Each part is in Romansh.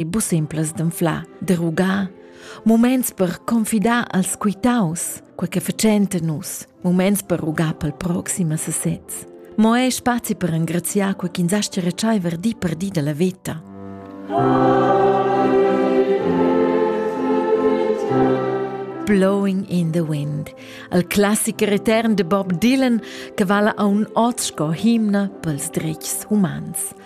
e bu simplas d'anflar, de rugar, muments per confidar als quitaus, quei che facenta nus, muments per rugar pel proxima sesez. Mo è spazi per engraziar quei ch'ins astia retschaiver di per di dalla veta. Blowing in the Wind, al classiker etern de Bob Dylan che vala a un oz sco himna pels dretgs humans –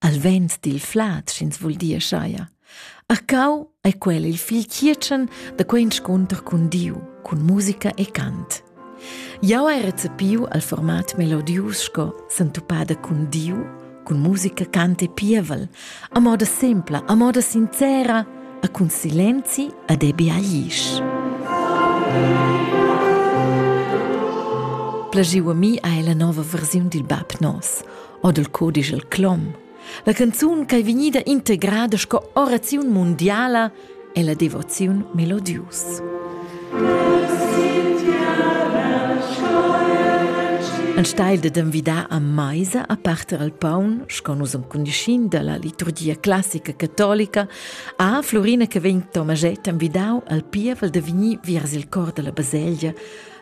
al vent dil flad, sch'ins vul dir schaia. Arcau ei quel il fil chietschen da quei inscunter cun Diu, cun musica e cant. Jau hai recepiu al format melodius sco sentupada cun Diu, cun musica, cant e pievel, a moda sempla, a moda sincera, a cun silenzi ad ebi aglisch. Plagiu a mi hai la nova versiun dil bab nos. o dal codisch el clom. La canzun ch'ei vegnida integrada sco oraziun mundiala è la devoziun melodius. Ein steil de envidar a meisa a parter al paun, sco nus am cundischin dalla liturgia classica catolica, a Florina che vegn Tomaget envidau al pievel de vegnir viers il cor della baselgia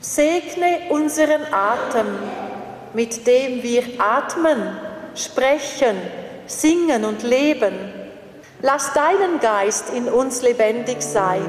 Segne unseren Atem, mit dem wir atmen, sprechen, singen und leben. Lass deinen Geist in uns lebendig sein.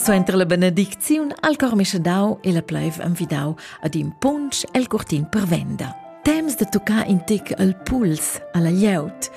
Suenter la benedicziun al cor mischedau e la pleiv envidau ad in punsch el curtin per venda. Temps de toccare in tic al puls, alla glieud.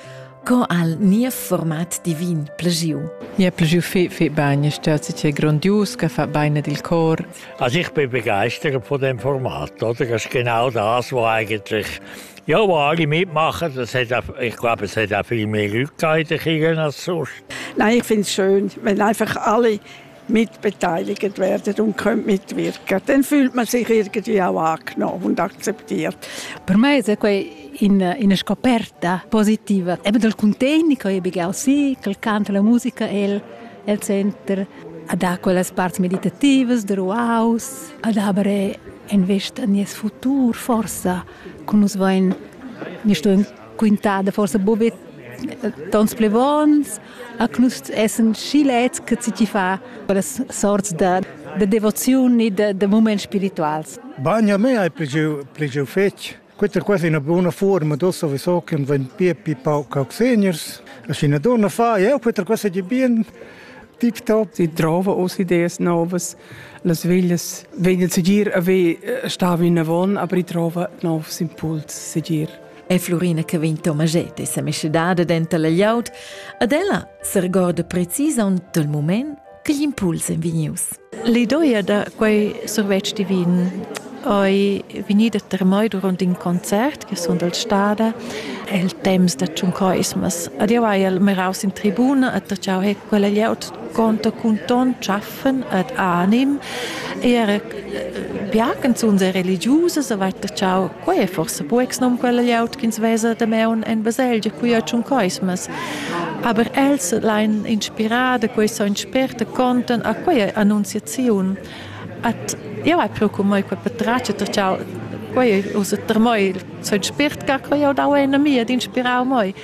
Co al nia format divin plegiu? Nia plegiu fe, fe bain, stat si grondius, che fa bain ed il cor. Also ich bin begeistert von dem Format, oder? Das ist genau das, was eigentlich ja, wo alle mitmachen, das hat auch, ich glaube, es hat auch viel mehr Leute gegeben als sonst. Nein, ich finde es schön, wenn einfach alle mitbeteiligt werden und können mitwirken. Dann fühlt man sich irgendwie auch angenommen und akzeptiert. Per me è quei in, in scoperta positiva. Eben dal contegni che io begau sì, che canta la musica è il center, ad ha quelles parts meditativas der Wow-Haus, ad aber invest a nies futur forsa, con us vain, mi sto quintada forsa bobet tons plevons, a nus essen schi lets che ci fa quelles sorts da, da devoziun e da, da moments spirituals. Bagna me hai plegeu plegeu fetg. Questa è quasi una buona forma, do sowieso che wenn più più pauc seniors, als in donna fa, ja, questa cosa di bien tiptop. Sie trauen aus Ideen Novas, las veglias, wenn sie dir, wie stehen wir in der Wohnung, aber ich traue auf Impuls, sie dir. è Florina che vegn Tomaget e sa meschedada denter la gliaud, ad ella sergorda precisaun dal moment che gl'impuls en vegnius. L'idoia da quei survetsch divin ei vegnida termai durant in concert che sun dal stada el temps da Tschuncoismas. Adieu hai el meraus in tribuna e da ciao he quella glieud conta cun ton tschaff pfeffen et anim er äh, ja canzuns e religiusas a vatta ciao quei è forse buex nom quella liaut ch'ins vesa de meun en baselgia qui a tschun coismas aber els lein inspirada quei so inspirta conten a quei annunziaziun at ja è pro come quei patraccia ta ciao quei usa ter moi so inspirt ca quei au dau en a mia d'inspirau moi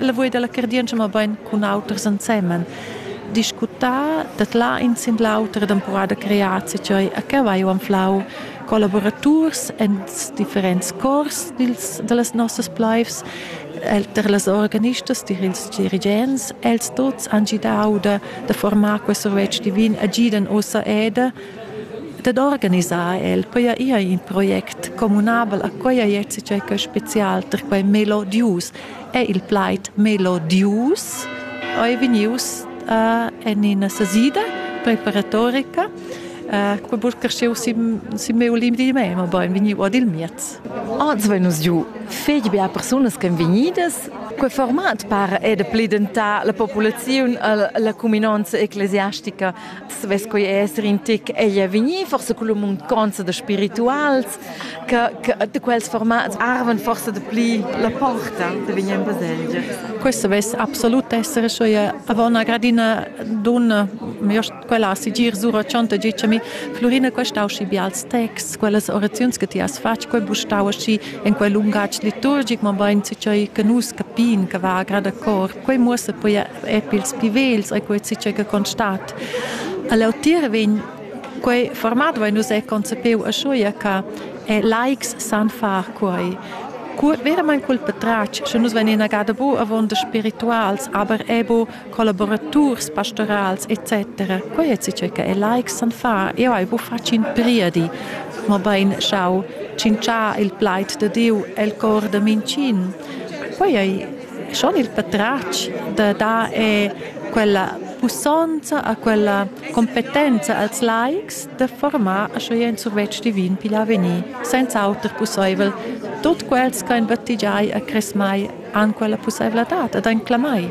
lavur dalla cardientscha mabain cun auters ensemen discutà dat là in sin l'auter temporada creazi cioè a che vai anflau collaboraturs en differents cors dils, dallas nossas pleivs per las organistas dils dirigents els tots han gidau da, da formar quest survetsch divin a gidan ossa eda Dad organisar el poja ir in project communabel a quella ierts tgei che special per quei melodius è il plaid melodius ei vegnius uh, en ina sasida preparatorica uh, quei burcarscheu si si meu limdi mei ma bein vegniu ad il miez Oggi vai nos giu fetg bia persunas che vegnidas Quei format par è de pli dentà la populaziun, la cuminanza ecclesiastica savess quei esser in tic egl vegnir forse cun munconza da spirituals che, che de quels formats arven forse de pli la porta de vegnir in baselgia. Questo vess absolut essere sua avò una gradina donna io quella sigir sura chonta dicemi Florina questa usci bials texts quellas oraziuns che ti has fatg quel bustau asci in quel lungatg liturgic ma bain ci che nus capin che va a grada cor Quei muossa poi è pils pli vegls e quei si che constat. All'otir vegn quei format vai nus è concepeu a schuia che likes san far quei. Verament cul patratg, sche nus venin agada bu avonda spirituals, aber ebo collaboraturs pastorals etc. Quei è si che likes san far. Io hai bu fatg in priedi, ma bein schau cincià il plaid de Diu el cor de mincin. Quei ei Schon il patratg da dar è quella pussonza a quella competenza als laics da formar a schoi en survetsch divin pigl avegnir, senza auter pusseivel tut quels che ein battigiai a cresmai an quella pusseivladad ad ein clamai.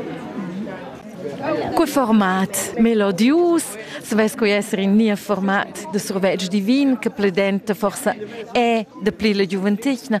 Cu format melodius, svess cu esser in nia format de survetsch divin, che pledenta forsa è de pli la giuventetna,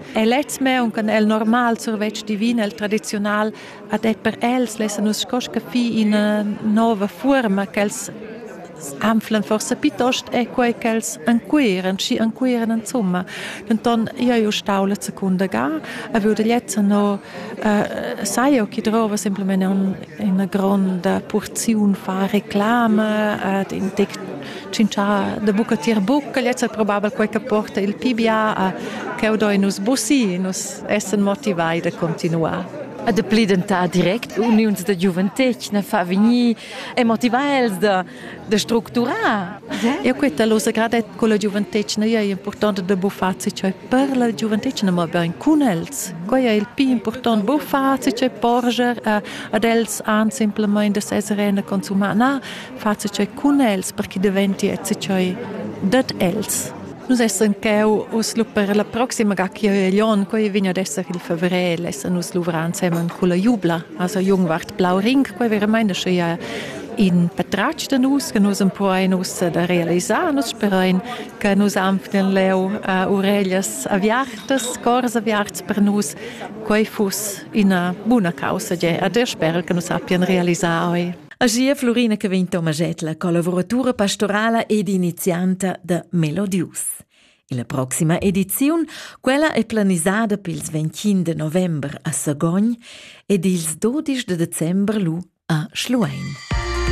E lez meun con el normal survetsch divin el tradizional ad et per els lessa nus scosca fi in eh, nova forma che els anflan forse piuttost è quei che els ancuiren, schi ancuiren insomma. Denton io io stau la seconda ga, a würde jetzt no äh, sai io chi drova semplicemente un, una grande porzione fa reclame, ad in tec Cincià da buca tier buca lezza probabel quei che porta il PBA a cheu do nus busi, nus essen motivai da continuar. A de pli dentar direct uniuns da giuventetgna fa vegnir e motivar els da, da structurar. Eu queta lo sagradett con la giuventetgna è important da buffar cioè per la giuventetgna ma ben cun els. Quai è il più important buffar cioè porger ad els an simplemente da sesere a consumar. Na, face che cun els per che deventi e cioi dat els. Nus essan cheu uss lu per la proxima ga che Jon quei vegn ad esser il fevrel, essan nus luvrar insemen con la jubla, also Jungwart Blau Ring, quei veramente sche ja in patratg da nus, che nus empruein us da realisar, nus sperein che nus anften leu uh, urellas aviartas, cors aviarts per nus, quei fuss ina buna causa, ge, ad er sper che nus appien realisar oi. Agia Florina che vegn Tomaschett, la collavuratura pastorala ed inizianta da Melodius. La proxima ediziun, quella è planisada per ils 25 de november a Sagogn ed ils 12 de december lu a Schluein.